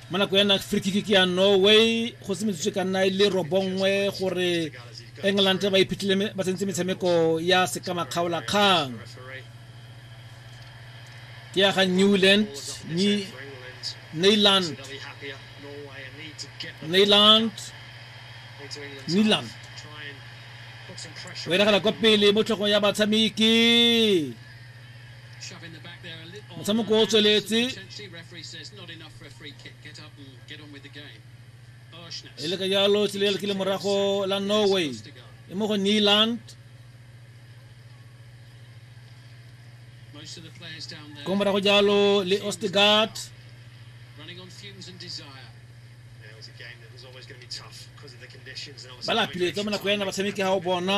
mo nako ya frikiki ke ya norway go se metsotso ka nna e le robongwe gore england ba iphitlhile ba tsentse metshameko ya sekamakgaolakgang ke ya ga newland ni neyland neyland neyland o e nagana kwa pele mo tlhogong ya batshameki motshameko o tsweletse e le ka jalo tsela ele ke le morago la norway e mo go neeland ko morago jalo le ostegard ba lapile tsa mo nako yana batshameki ga o bona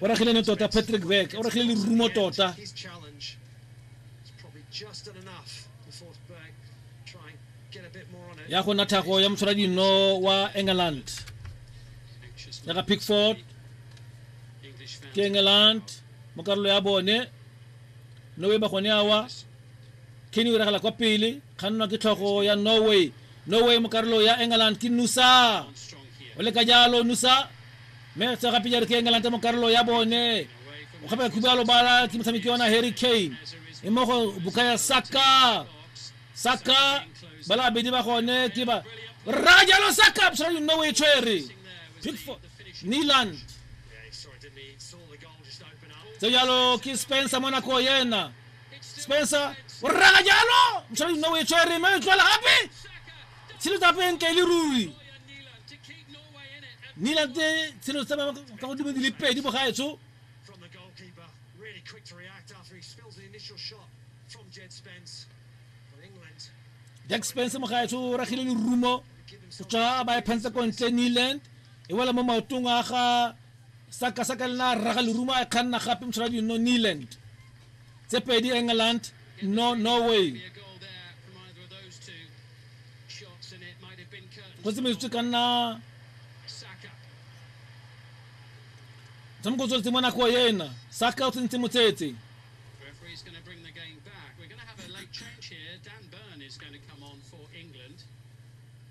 o ragilene tota patrick beck o ragile lerumo tota ya go nna thago ya motshwara dino wa england ya ga pickford ke england mo karolo ya bone norway ba gone awa kenny o ragela kwa pele kgannwa ke tlhogo ya norway no way mo karolo ya england ke nusa o leka jalo nusa mme tsa gape jalo ke england mo karolo ya bone o gape khuba lo bala ke motshameki ona harry kane e mo go bukaya saka saka bala abedi ba gone ke ba ra jalo saka absolutely no way tshwere pickford niland tse jalo ke spencer monaco yena spencer o rraga jalo mosadi nna o e tshwere mme o tlwala gape tshelo tsa peng ka e le ruri nila tse tshelo tsa ka godimo di le pedi bogaetsho jack spence mogaetsho o ragile lerumo go tswa ba e phantse kontle newland e wela mo maotong a ga sakasaka le na rraga lerumo a e kganna gape mosara di no neeland tse pedi england no norway go tse metsotso ka nna motshameko o tsweletse mo nako ena saka o tsentse motsetse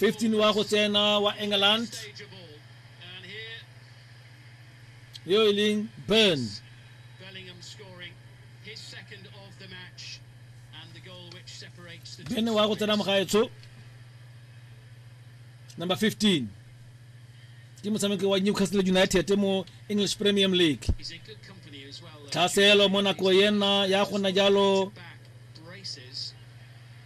15 wa go tsena wa england yo e leng burn burn wa go tsena mogaetsho number 15 ke motshameki wa newcastle united mo english premium league tlhaselo mo nako yena ya gona jalo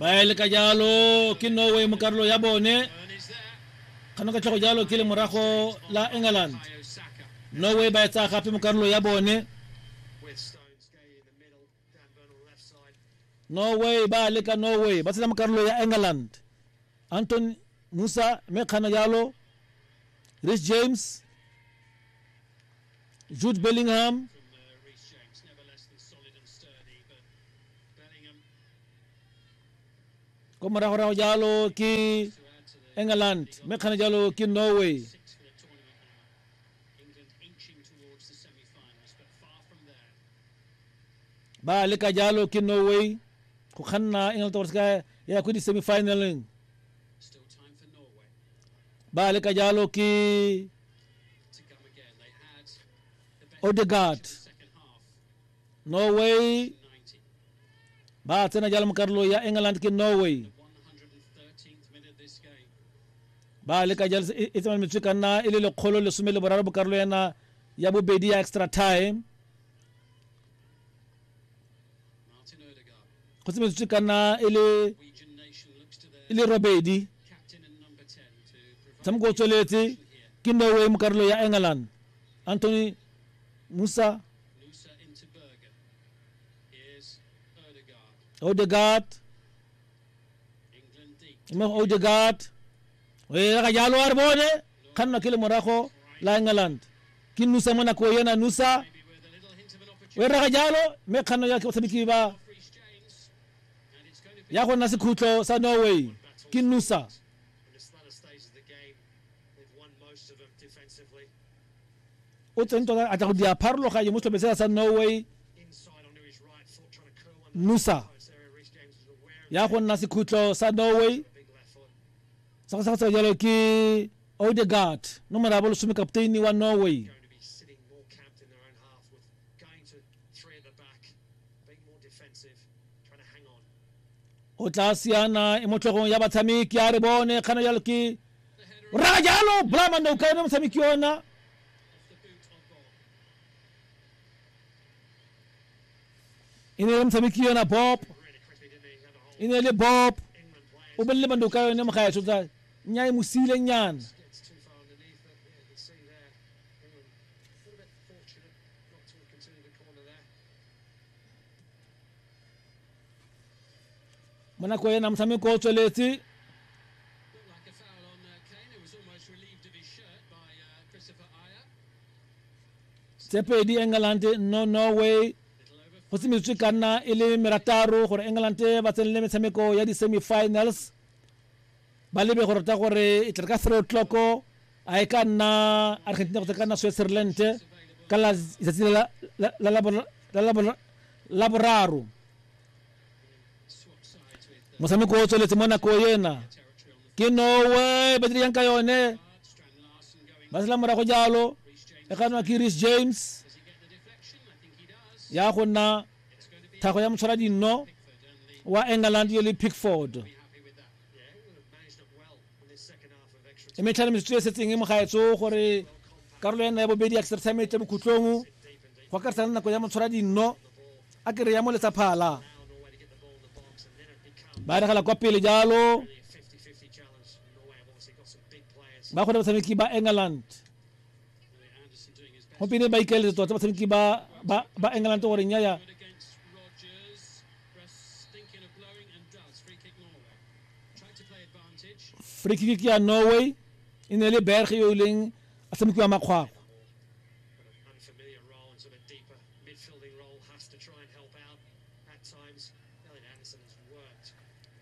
ba e leka jalo ke norway mo karolo ya bone kgano ka tlhogo jalo ke le morago la england norway ba e tsaya gape mo karolo ya bone norway ba leka norway ba tshela mo karolo ya england anton musa mme kgana jalo rich james Jude Bellingham. ko moragorago jalo ke england mme kgana jalo ke norway ba leka jalo ke norway go kganna england towards ka ya ko di-semifinaleng ba leka jalo ke Odegaard Norway ba tsena jalo mo karolo ya England ke Norway ba leka jalo e e tsamaya metswe ka nna e le lekgolo lesome le boraro bokarolo yana ya bobedi ya extra time go tsemetswe ka nna e le e le robedi tshameko o tsweletse ke norway mo karolo ya england anthony musa odegard mo odegaard o ela ga jalo a re bone kgannwa ke le morago la england ke nusa mo nako yena nusa o ela ga jalo mme kganno ya batshameki ba ya go nna sekhutlo sa norway ke nusa o tseng tota a tla go dira pharologanyo mo setlhopheng sela sa norway nusa ya go nna sekhutlo sa norway sa go sa go tsa jalo ke odegard nomoro ya bolesome kapteini wa norway o tla siana e mo tlhogong ya batshameki a re bone kgana jalo ke o raga jalo blamande o ka yone motshameki ona e ne le motshameki yona bob e ne le bob o bolele bande o ka yone mogaetso tsa nya e mo siile nyana mo nako ena motshameko o tsweletse tse pedi england no norway go semetswe ka nna e le merataro gore england ba tsenele metshameko ya di-semifinals ba lebe go rata gore e tle ka three o'clock a e ka nna argentina go ka nna switzerland ka letsatsi la boraro motshameko o tsweletse mo nako ena ke norway ba diriyang ka yone ba sela morago jalo e ka nwa ke ris james ya go nna tlhago ya motshwaradinno wa england yo le pickford e metlhale metsotso e setseng e mogaetso gore karolo ya nna ya bobedi ya extra time e tle bokhutlong go akarisa le nako ya motshwaradinno a kere ya mo letsaphala ba regela kwa pele jalo ba kgone batshameki ba england gompieno ba ikaeletse tota batshameki ba ba england gore nyaya free kick ya norway e ne le berg yo e leng a tshamekiwa makgwakgwa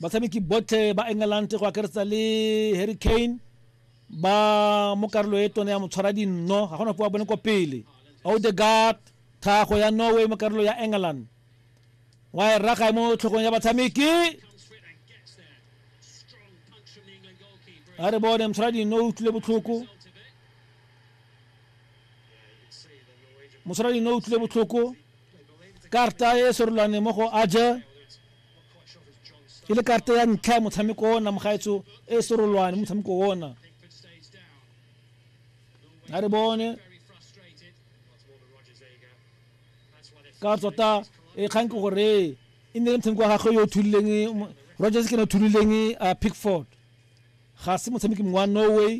batshameki botlhe ba england go akaretsa le harry kane ba mo karolo e tone ya motshwara dinno ga gona po wa bone kwa pele odegard tlhago ya norway mo karolo ya england wa e raga e mo tlhogong ya batshameki a re bone motshwara dinno o utlwile botlhoko mosadi no utlwile botlhoko karta e sorolwane mo go aja e le karata ya ntlha ya motshameko ona mogaetso e e serolwane motshameko ona a re bone ka tsota e kgang ke gore e ne le motshameko wa gagwe yo o thulileng rogers ke ne o thulileng a pickford ga se motshameki mongwe wa norway